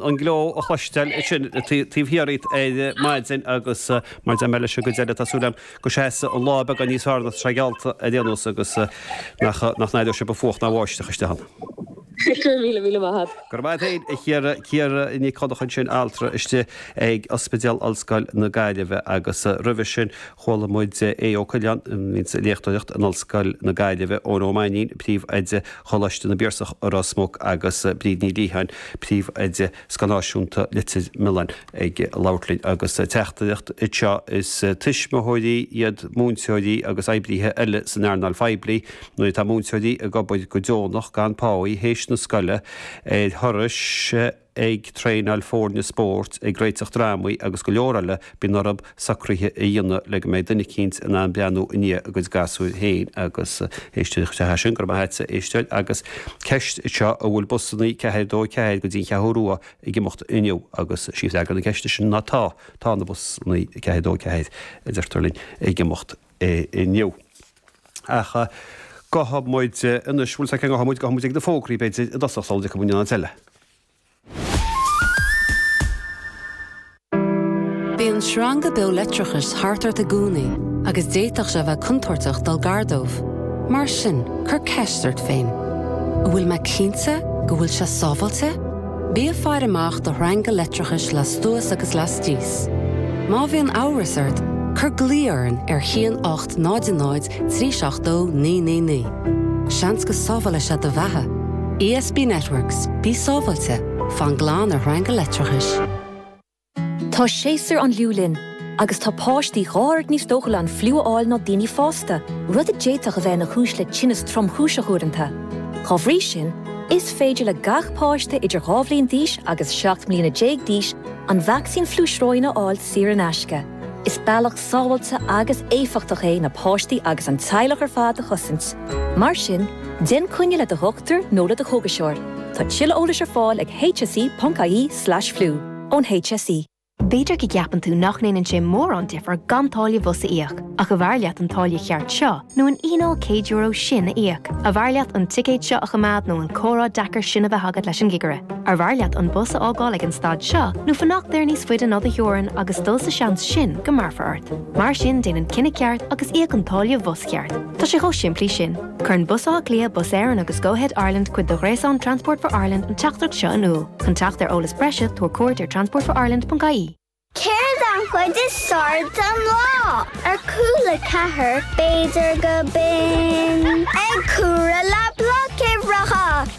an gleo a chloisteáil ansin taobh thiar díot ar maidin agus mar a deir mé leis an gcuid eile tá súil agam go seasfaidh an lá beagán níos fearr ná atá geallta ar aon nós agus nach n-éireoidh sé ba fuacht ná báisteach isteach ann. Go raibh míle míle maith a't. Go raibh maith a't féin a Chiara, Ciara Nic Dhonncha ansin altra istigh ag ospidéal Ollscoil na Gaillimhe agus roimhe sin Chuala muid Aodh Ó Coileáin insa léachtóireacht in Ollscoil na Gaillimhe Eoin Ó Mainín, príomhoide Choláiste na bPiarsach i Ros Muc agus Bríd Ní Liatháin, príomhoide Scoil Náisiúnta Leitir Mealláin ag labhairt linn agus teachtaireacht anseo, Is tuismitheoirí iad múinteoirí agus oibrithe eile san earnáil phoiblí. Nuair atá múinteoirí ag obair go deonach gan páí théis na scoile ar thurais, ag traenáil foirne spóirt, ag réiteach drámaí agus go leor eile, bíonn orthu socruithe a dhéanamh le go mbeidh duine eicínt in ann breathnú i ndiaidh a gcuid gasúir féin agus éisteacht leis. Sea, sin, go raibh maith a't a éisteoir. Agus ceist anseo, an bhfuil busannaí ceathair a dó a ceathair go dtí an Cheathrú Rua ag imeacht inniu agus sí freagra na ceiste sin ná tá, tá na busannaí ceathair a dó a ceathair, a deirtear linn, ag imeacht inniu. ach gabhfaidh muid anois, bhfuil a fhios a't cá ngabhfaidh muid, gabhfaidh muid ag na fógraí, b'fhéidir, i dtosach, sula dtiocfaidh muid in aon áit eile. Bíonn sreanga beo leictreachais thart ort i gcónaí agus d'fhéadfadh sé a bheith contúirteach dul gar dóibh. Mar sin, cuir ceist ort féin, An bhfuil mé cinnte go bhfuil sé sábháilte? Bí ag faire amach do shreanga leictreachais lastuas agus lastíos. Má bhíonn amhras ort, cur glao orainn ar 1800 372 999. Seans go sábhálfaidh sé do bheatha. ESB Networks, bí sábháilte, fan glan ar shreanga leictreachais. Tá séasúr an fhliú linn agus tá páistí dhá oiread níos dóchúla an fliú a fháil ná daoine fásta, rud a d'fhéadfadh a bheith ina chúis le tinneas tromchúiseach uaireanta. Dá bhrí sin, is féidir le gach páiste idir dhá bhliain d'aois agus seacht mbliana déag d'aois an vacsaín fliú sróine a fháil saor in aisce. Is bealach sábháilte agus éifeachtach é na páistí agus an teaghlach ar fad a chosaint. Mar sin, déan coinne le do dhochtúir nó le do chógaiseoir. Tá tuilleadh eolais ar fáil ag hse.ie/fliú. ón HSE. B'fhéidir go gceapann tú nach ndéanann sé mórán difear gan táille bhus a íoc, ach arbh fhearr leat an táille cheart seo nó an fhíneáil €100 sin a íoc? Arbh fhearr leat an ticéad seo a choimeád nó an comhrá deacair sin a bheith agat leis an gcigire? Arbh fhearr leat an bus a fhágáil ag an stad seo nó fanacht air níos faide ná do theorainn agus dul sa seans sin go mbéarfar ort? Mar sin déan an cinneadh ceart agus íoc an táille bhus cheart. Tá sé chomh simplí sin. Cuireann Bus Átha Cliath, Bus Éireann agus Go Ahead Ireland cuid de ghréasán Transport for Ireland an teachtaireacht seo in iúl. Chun teacht ar eolas breise, tabhair cuairt ar transportforireland.ie. Céard an chuid is fearr den lá? Ar Cúla4, b'fhéidir gurb in. Ag comhaireamh le bloc uimhreacha.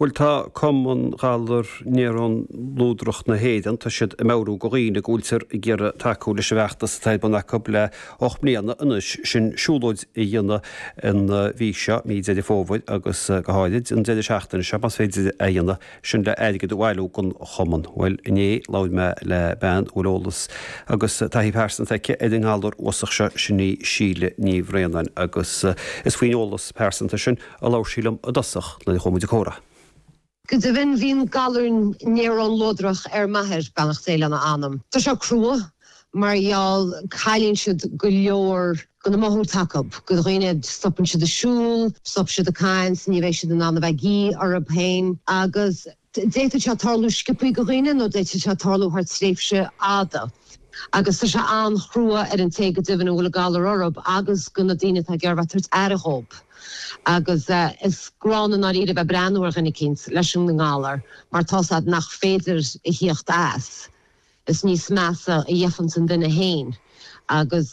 Bhuel, tá Cumann Galar Néarón Luadrach na hÉireann, tá siad ag meabhrú do dhaoine go bhfuiltear ag iarraidh tacú leis an bhfeachtas atá ar bun acu le hocht mbliana anois, sin siúlóid a dhéanamh an mhí seo, mí Dheireadh Fómhair, agus go háirid an deireadh seachtaine seo, más féidir é a dhéanamh. sin le airgead a bhailiú don chumann. Bhuel, inné labhair mé le bean a bhfuil eolas agus taithí pearsanta aici ar an ngalar uafásach seo, sin í Síle Ní Bhraonáin agus is faoin eolas pearsanta sin a labhair sí liom i dtosach nuair a chuaigh muid ag comhrá. Go deimhin, bhí an galar néarón luadrach ar m'athair, beannacht Dé lena anam. Tá sé crua mar gheall cailleann siad go leor. Go na máthúirt acu. Go dhaoine, stopann siad ag siúl, stop siad ag caint, ní bheidh siad in ann a bheith ag ithe orthu féin. Agus d'fhéadfadh sé tarlú sciobtha go dhaoine nó d'fhéadfadh sé tarlú thar tréimhse fhada. Agus tá sé an-chrua ar an té go deimhin a bhfuil an galar orthu agus go na daoine atá ag iarraidh a bheith ag tabhairt aire dhóib. Agus is gránna i ndáiríre a bheith ag breathnú ar dhuine eicínt leis an ngalar mar tá a fhios agat nach féidir a thíocht as. Is níos measa a gheibheanns an duine féin. Agus.